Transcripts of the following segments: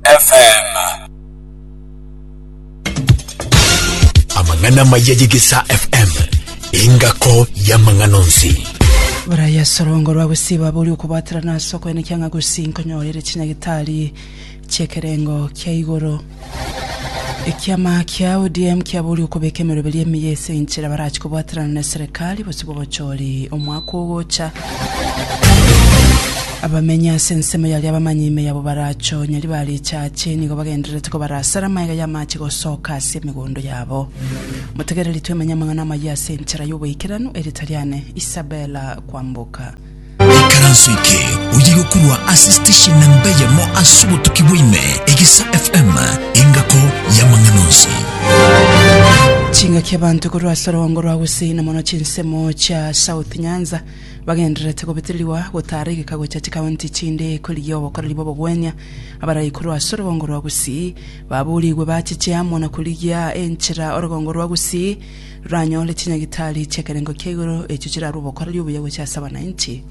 FM. Amang'ana amaya y'Egesaa FM, engako y'amang'ana onsi. Buraya ase orongo rwa gosiba bori okobaterana ase okoenekia ng'a gusii nkonyorire chinyagitari chi'ekerengo kia igoro. Ekiama kia ODM kiabori okobeka emeroberio emiya ase enchera barachi kobaterana na eserekari bosibwe obochori omwaka ogocha. Abamenyi ase ensemo y'aria abamanyi ime yabo barachonyeri bare echache, nigo bagendererete kobarasera amaega y'amache gosoka ase emegondo yabo. Motegereri twemenye amang'ana amayia ase enchera y'oboikeranu, ere tariane Isabella kwamboka. Ikaranso eke oye gokurwa ase station na mbeyemo ase obotuki bwaime Egesa FM engako y'amang'ana onsi. Chingaki abanto korwa ase orogoogo rwa gusii na mono chinsemo chia South Nyanza, bagendererete gobeterigwa gotaara egeka gochia chikaunti chinde korigia obokoreri bw'obogwenia. Abaraikuru ase orogongo rwa Gusii baboorigwe bachiche amo na korigia enchera orogongo rwa Gusii roranyore chinyagitari chi'ekerengo kia igoro echio chirarue obokoreri obuya gochia ase abananchi.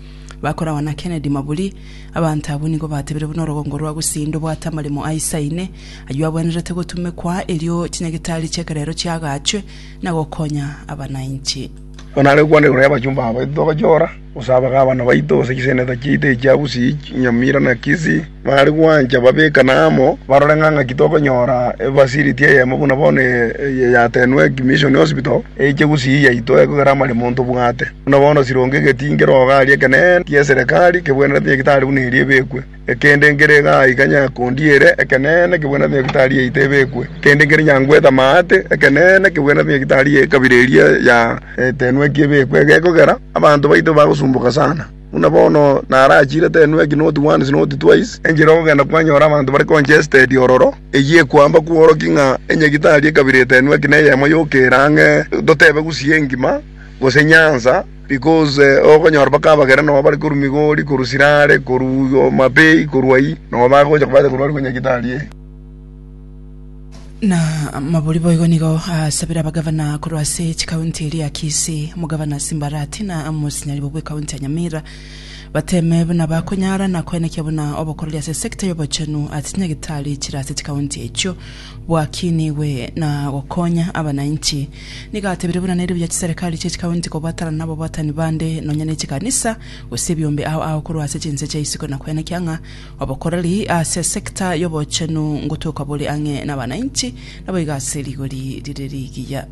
Bakoragwa na Kennedy Maburi, Abanto abwo nigo batebire buna orogongo rwa Gusii ndobwate amaremo aisaine ayio abwenerete gotumekwa erio chinyagitari chi'ekerero chiagachwe na gokonya abananchi. Onare gokwana igoro y'abachumba aba baito togochia gora, gose abagabana baito, gose chiseneto chiaito echia Busi, Nyamira, na Kisii, baare gwancha babekane amo, barore ng'a ng'aki tokonyora efacility eyemo buna bono eye yatenwe ki Mission Hospital, eiche Gusii yaito ekogera amaremo ntobwate. Buna bono sironge egetingero iga aria ekenene ki'eserekari kebwenerete nyagetari buna eria ebekwe. Ekende nkere igaa iga nyakondi ere, ekeneene kebwenerete nyagitari yaito ebekwe. Ekende nkere nyangwete amaate, ekeneene kebwenerete nyagitari y'ekabira eria ya Etenweki ebekwe. Egekogera, abanto baito bagosumboka sana. Buna bono narachire Tenweki not once not twice, enchera ogogenda kwanyora abanto bare congested ororo, eyio ekwamba kworokia ng'a enyagitari y'ekabira Etenweki neyemo yokera ang'e, totebe gusii engima, gose nyansa, Because okonyora mpaka abagera nabo bare korwa Migori, korwa Sirare, korwa Homa Bay, korwa ayio, nabo bagocha kobacha korwa are korwa Nyagetari eye. Na Maburi boigo nigo asabire abagavana korwa ase chikaunti eria Kisii, Omogavana Simbarati na Mosinyaribo bw'Ekaunti ya Nyamira bateme buna bakonyara na koenekia buna obokoreri ase sector y'obochenu ase Nyagetari chire ase chikaunti echio. bwakinigwe na gokonya abanainchi. Nigo atebire buna nere buya chiserekari chie chikaunti kobwatanana nababwatani bande nonya ne chikanisa gose ebiombe ao ao korwa ase chinse chia isiko na kwenekia ng'a obokoreri ase esector y'obochenu ngotoka bore ang'e nabanainchi naboigo ase rigori rire rigiya.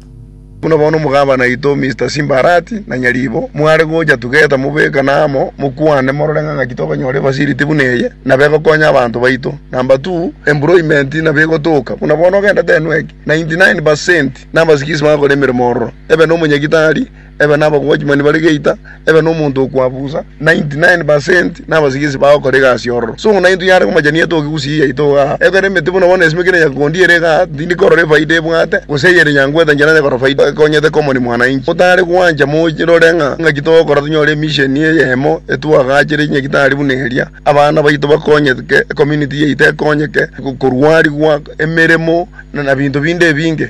Buna bono omogabana oito Mister Simbarati na Nyaribo mware gocha tugeta mobekane amo mokwane morore ng'a ng'aki tokonyora efacility buna eye na begokonya abanto baito. Number two, employment nabo egotoka buna bono ogenda tenwek 99 percent nabasikisi bagakora emeremo ororo ebe nomonyagitari, ebe nabagwachimani bare geita, Ebe nomonto okwabusa. 99 per cent nabasigisi bagokora egasi ororo. So ng'una intwe yare komachania etoke gusii yaito iga aa. Ekero emete buna bono esimekire nyakegondi ere iga aa, tindi korora efaida ebwate, gose eyere nyangwete nchera nyakora faida ekonyete common mwananchi. Otare gwancha morore ng'a ngaki togokora tonyore emission eyemo etwagachere enyagitari buna eria, abana baito bakonyetke, ecommunity yaito ekonyeke, korwarigwa, emeremo, na binto binde ebinge.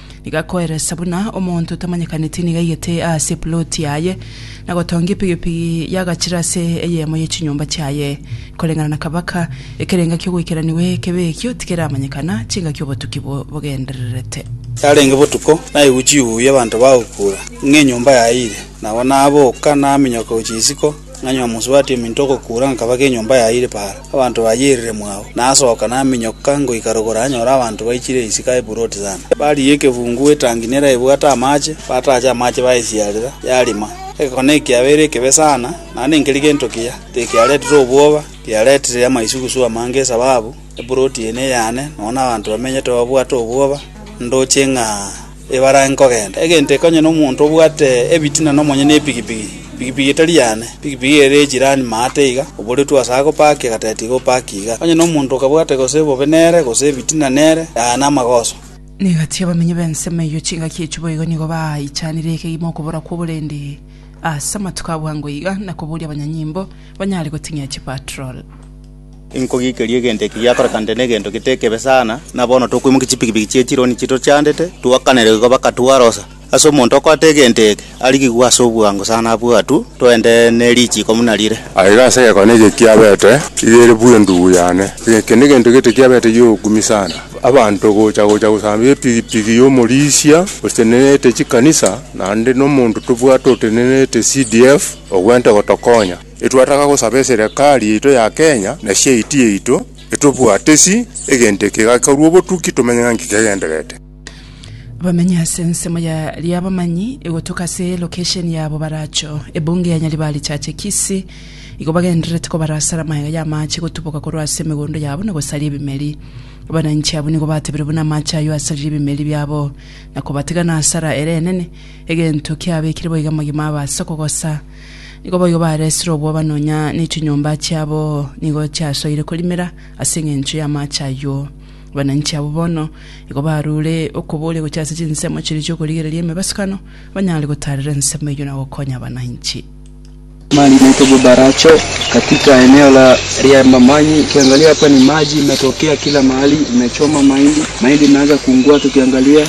Nigo akoeresa buna omonto otamanyekaneti nigo aigete aase epuloti yaye, na gotonga epigipigi y'agachire ase eyemo ye chinyomba chiaye. Koreng'ana na kabaka, ekero engaki y'ogoikeranigwa ekebe ekio tikeramanyekana, chingaki obotuki bo- bogendererete. Yarenge botuko, naigwe chihuyu y'abanto bagokura, ng'a enyomba yaire. Nabo naboka naminyoka gochia isiko, Ng'anywe amosubati ominto ogokuura nkabake enyomba yaye ire paara, abanto bayeirire mwao. Nasoka naminyoka ngoika rogoro anyore abanto baichire isiko aye buroti sana. Barigia ekefungu etangi neraebwate amache, bataacha amache bayesiarera, yarima. Egekone ekiabeire ekebe sana, naende nkeri gento kiya, tekiaretire obwoba, kiaretire amaisugusugu amange esababu eburoti eye neyane, nonya nabanto bamenyete babwate obwoba, ndoche ng'a. ebarange kogenda, egento ekonyene omonto obwate ebitina nomonyene epigipigi, pigipigi etari yane, pigipigi ere ye chirani maate iga, oboretwe ase agopaaka egateti iga opaake iga. Onye nomonto okabwate gose bobe nere, gose ebitina nere, yaya namagoso. Negati abamenyi b'ensemo eyio chingaki echio boigo nigo baichanire ekegima okobora kw'oborendi ase amatuko a bwango iga, na koboria abanyanyimbo banyare goting'ia chipatrol. Inkogiikeria egento eke giakorekanete negento getekebe sana, na bono tokoimokia chipikipiki chie chironi chitochandete, twakanere igo baka twarosa. Ase omonto okoata egento eke, arigigwe ase obwango sana abue atwo, twende ne richiko buna rire. Aye iga ase egekone eke kiabete, iga ere bwe endubu yane. Eke negento gete kiabete gi'obokumi sana. Abanto gocha gocha gosambia epigipigi y'omorisia otenenete chikanisa, naende nomonto tobwate otenenete CDF, ogwente gotokonya. Etwataka gosaba eserekari yaito ya Kenya na chiaiti yaito etobwate si egento eke egakarwa obotuki tomenye ng'a nki kegendererete. Abamenyi ase ensemo ya Riabamanyi egotoka ase lokesheni ya Bobaracho, ebunge ya Nyaribari Chache Kisii, igo bagendererete kobarasara amaega y'amaache gotuboka korwa ase emegondo yabo na gosaria ebimeri. Abananchi abwo nigo batebire buna amaache ayio asaririe ebimeri biabo na kobatega na asara ere enene, egento kiabekire boiga amagima abaasa kogosa. Nigo boigo baresire obwoba nonya nechinyomba chiabo nigo chiasoire korimera ase engencho y'amaache ayio. Abananchi abwo bono nigo barure okoboria gochia ase chinsemo chiria chi'okorigereria emebasukano, banyare gotaarera ensemo eyio na gokonya abananchi. Maji na itobo baracho katika eneo la ria mamanyi ukiangalia hapa ni maji imetokea kila mahali imechoma mahindi mahindi imeanza kuungua tukiangalia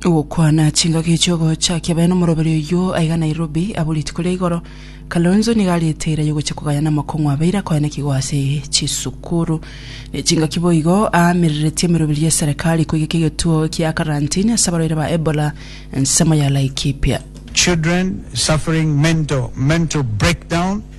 Ogokwana chingaki echi ogochakia baye nomoroberi oyio aiga Nairobi abwo rituko ria igoro Kalonzo nigo arete eira yogochia kogaya namokong'u abeire akoenekigwa ase chisukuru ne chingaki boigo aamireretie emeroberi ya eserekari koigeka egetuo kia karantini ase abarwaire ba Ebola ensemo ya Laikipia. Children suffering mental mental breakdown.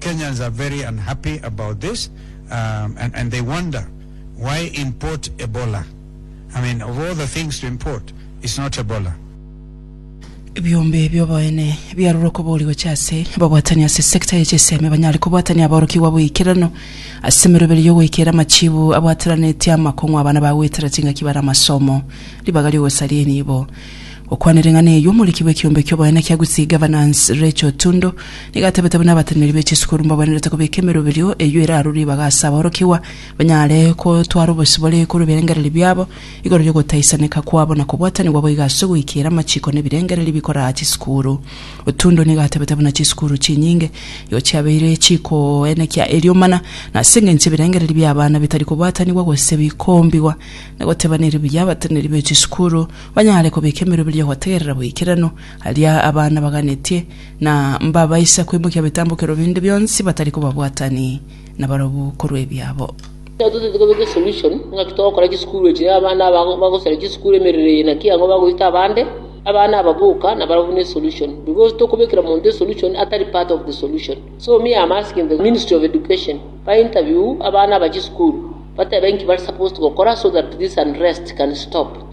Kenyans are very unhappy about this and and they wonder why import Ebola I mean of all the things to import it's not Ebola. Ebiombe ebi oboene biarure okobori gochia ase ababwatani ase sector ye chisemi banyare kobwatania aborokigwa boikeranu ase emeroberio yogoikera amachibu abwateranetie amakong'u abana bagoetera chingaki bare amasomo ribaga riogosaria enibo Gokwana ring'ana eyio, omoriki bw'ekiombe ki'oboene kia Gusii, Governance, Rachael Tundo, nigo atebete buna abateneneri be chisukuru mbagwenerete kobeka emeroberio eyio ere aro ribaga ase aborokigwa, banyare gotwara obosio bore korwa ebirengererio biabo igoro ri'ogotaisaneka kwabo na kobwatanigwa boigo ase ogoikera amachiko na ebirengererio bikoraa chisukuru. Otundo nigo atebete buna chisukuru chinyinge igo chiabeire chikoenekia eriomana na ase engencho ebirengererio bi'abana bitari kobwatanigwa gose bikombigwa na goteba nere buya abateneneri be chisukuru banyare kobeka emeroberio ya gotegerera boikeranu, aria abana baganetie, na mbabaisa kwemokia bitambokero binde bionsi batari kobabwatani nabarabwo korwa ebiabo. Ekero totete kobeka esolution, ing'aki togokora chisukuru echi, na abana aba bagosara chisukuru emerero eye naki ang'e bagoita abande, abana aba boka nabarabwo ne solution, because tokobekera omonto esolution atari part of the solution. So me am asking the ministry of education ba interview abana aba chisukuru batebe nki bare supposed gokora so that this unrest can stop.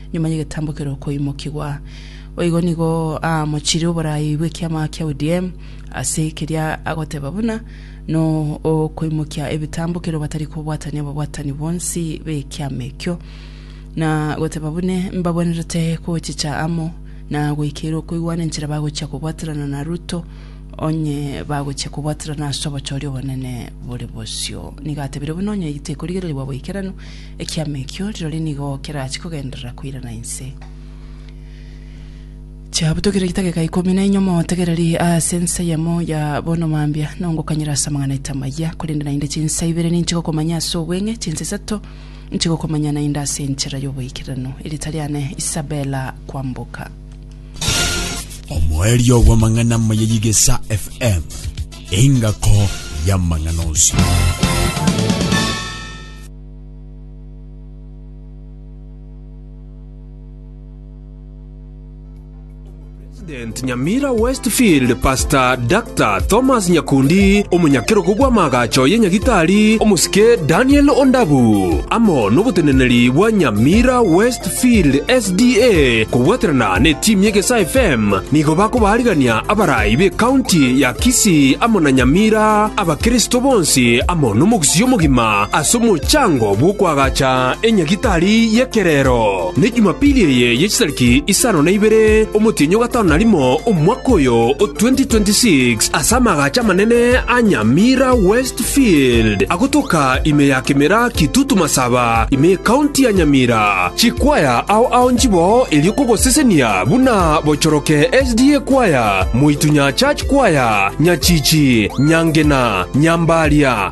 Nyuma y'egetambo keria okoimokigwa, boigo nigo aamochirie oboraai bw'ekiama kia UDM ase keria agoteba buna n'okoimokia ebitambo kero batari kobwatania ababwatani bonsi b'ekiama ekio, na goteba buna mbagwenerete gochicha amo na goikeire okoigwana enchera bagochia kobwaterana na Ruto onye bagochia kobwaterana ase obochori obonene bore bosio. Nigo atebire buna onye tekorigererigwa boikeranu, Ekiama ekio rirorio nigo kerachie kogenderera koirana inse. Chiabutokire chidakika ikomi na enye omotegererie ase ensa eyemo ya bono mambia nongokanyera ase amang'ana aito amayia, korende naende chinsa ibere ninche gokomanya ase obweng'e, chinsa isato inche gokomanya naende ase enchera y'oboikeranu. Erieta riane Isabella Kwamboka. Omoerio bw'amang'ana amaya y'Igesa FM, engako y'amang'ana onsi. President Nyamira Westfield Pastor Dr. Thomas Nyakundi omonyakerogo bw'amaagacho ye Nyagitari omosike Daniel Ondabu amo n'oboteneneri bwa Nyamira Westfield SDA kobwaterana ne timu ye Gesa FM nigo bakobaarigania abarai be county ya Kisii amo na Nyamira abakristo bonsi amo n'omogusii omogima as'omochango bw'okoagacha enyagitari y'ekerero, ne Jumapili eye ye chitariki isano na ibere, omotienyi o gatano na rimo omwaka oyo o 2026, as'amagacho amanene a Nyamira Westfield, agotoka ime ya Kimera Kitutu Masaba, ime y'ekaunti ya Nyamira. Chikwaya ao ao nchiboo erio kogosesenia buna bochoroke SDA Kwaya, Moitunya Church Kwaya, Nyachichi, Nyangena, Nyambaria,